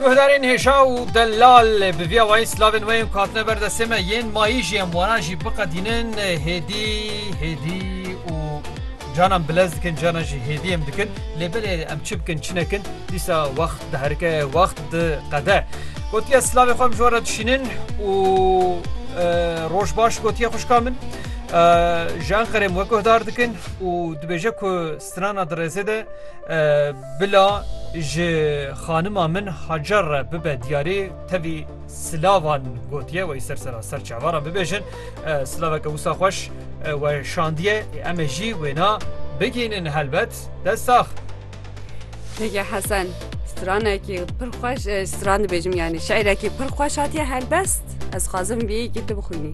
Guhdarên hêja û delal bi vî awayî silavên we yên ku hatine ber destê me yên mayî jî em wanan jî biqedînin hêdî hêdî û canan bilez dikin canan jî hêdî em dikin lê belê em çi bikin çi nekin dîsa wext diherike wext diqede gotiya silavê xwe em ji we re dişînin û roj baş gotiye xuşka min ji Enqerê min we guhdar dikin û dibêje ku Strana di rêzê de bila ji xanima min Hacer re bibe diyarê tevî silavan gotiye wê ser sera ser çavaran bibêjin silaveke wisa xweş we şandiye em ê jî wêna bigînin helbet destax. Peki Hasan stranekî pir xweş stran dibêjim yani şerekî pir xweş hatiye helbest ez xwazim vî yekî tu bixwînî.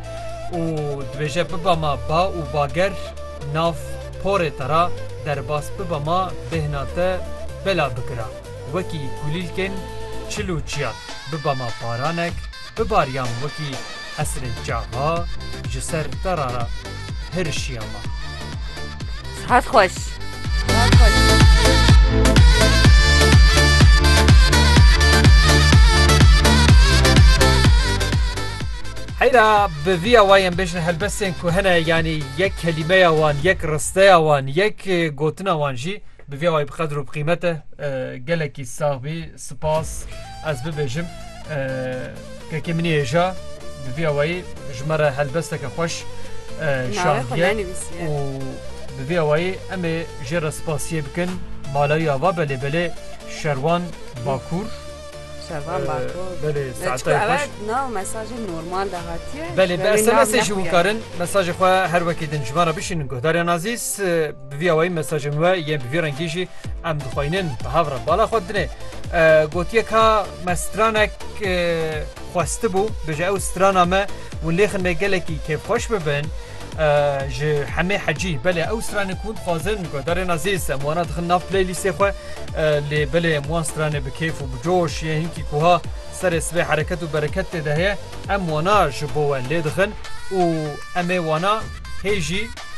û dibêje biba ma ba û bager nav porê te ra derbas biba ma bêhna te bela bikira wekî kulîlkên çil û çiyan biba ma baranek bibarîyan wekî hesirê çaxa ji ser te ra hirişîya ma. Sihet xweş. Heyra bi vî awayên bêjin helbestên ku hene yanî yek kelîmeya wan, yek risteya wan, yek gotina wan jî Bi vê ayê bi qedr û bi qîmete gelekî sax bî. Spas ez bibêjim kekê min êja bi vê awayî ji me re helbesteke xweş şandiye û bi vê awayî em ê jê re spasiyê bikin. Malayî ava belê belê Şerwan Bakur. Şervan Ee, Bakur. belê, Ee, saetayê çku xweş. evet nav mesajê normal de hatiye. Belê Ji bi berê nav SMS jî nexuye. wikarin mesajê xwe her wekî din ji me re bişînin guhdaryan azîz e, bi vî awayî mesajên we yên bi vî rengî jî em dixwînin bi hev re bala xwe dinê. E, Gotiye ka me stranek e, xwestibû bije ew strana me hûn lêxin me gelekî kêfxweş bibin ji hemê hecî belê ew stranên ku hûn dixwazin ku darên azîz em wana dixin nav playlîstê xwe lê belê em wan stranê bi kêf û bi coş yê hinkî ku ha serê sibê hereket û bereket tê de heye em wana ji bo we lê dixin û em ê wana hê jî